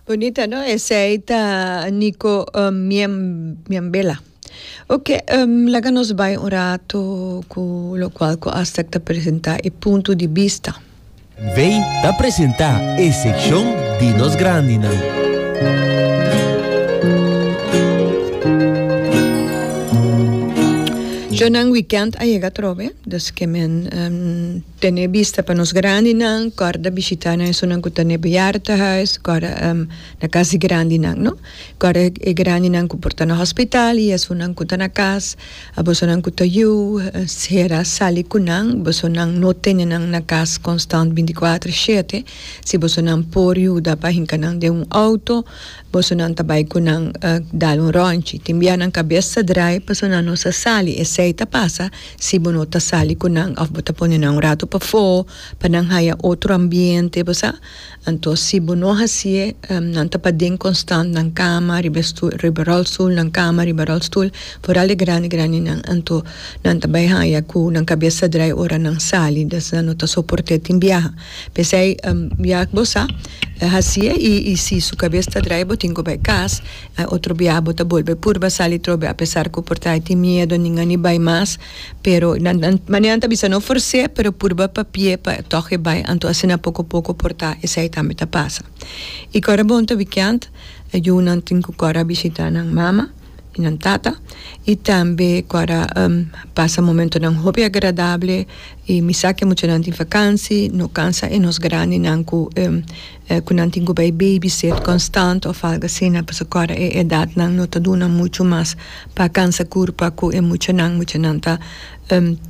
Bonita no, esei ta Nico uh, Miem, Miembela. Ok, um, laga nos bai un rato cu lo cual cu Aztec ta presenta e punto di vista. Vei ta presenta e seccion di nos grandinan. Jonan weekend a yega trobe, dus ke men um, Tene bista pa nos grandinan, kòrda bishitá nan esunnan ku ta na e bejaardenhuis, kòrda na kas di grandinan, no. Kòrda e grandinan ku por ta na hòspitaal i esunnan ku ta na kas. A bosonan ku ta yu sera sali ku nan, bosonan no tene nan na kas konstant binti kuater shete, si bosonan por yuda pa hinka nan den un outo, Boso nan ta bai cu nan dal un ronchi. Tin bia nan cabes ta draai paso nan no sa sali. Esey ta pasa si bo no ta sali cu nan of bo ta pone nan un rato pafo pa nan haya otro ambiente, bo sa. Anto si bo no haci e, nan ta paden constant nan cama, riba e stoel, riba rolstoel, nan cama, riba rolstoel, foral e grandi grandi nan. Anto nan ta bai haya cu nan cabes ta draai ora nan sali, des nan no ta soporte tin biaha. P'esei, bia ak bo sa hasié i i si su kabes ta drai bo tin ku bai kas. Otro bia bo ta bolbe purba sali trobe apesar ku por ta e tin miedu nin a ni bai mas, pero nan nan manera nan ta bisa no fors'é pero purba papi'é pa tòg e bai anto asina poko poko por ta esei tambe ta pasa. I kòrda bon ta wikiant, yunan tin ku kòrda a bishitá nan mama. y nan tata y tambe cu a pasa momentonan hopi agradable y mi sa cu muchanan tin vakansi no cansa e nos grandinan cu cu nan tin cu bay babysit constant of algo asina pasobra cu awe e edadnan no ta duna mucho mas pa cansa curpa cu e muchanan, muchanan ta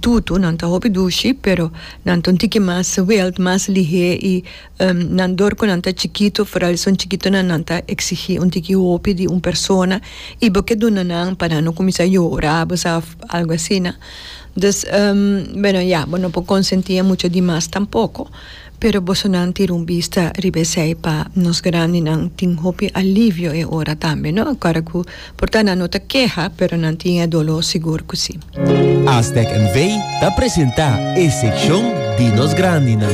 tutu nan ta hopi dushi pero nan ta un tiki mas swelt mas lihé y Nan dor cu nan ta chikitu, foral esun chikitunan, nan ta exigi un tiki hopi di un persona y bo ke duna nan pa nan no cuminsa yora, bo sa, algo asina. Dus, bueno, ya, bo no por consenti e mucha di mas tampoco, pero bosonan tira un bista riba esey pa nos grandinan tin hopi alivio e ora tambe, no? Ora cu, por ta nan no ta keha, pero nan tin e dolor sigur cu si. Aztec NV. ta presenta e seccion di nos grandinan.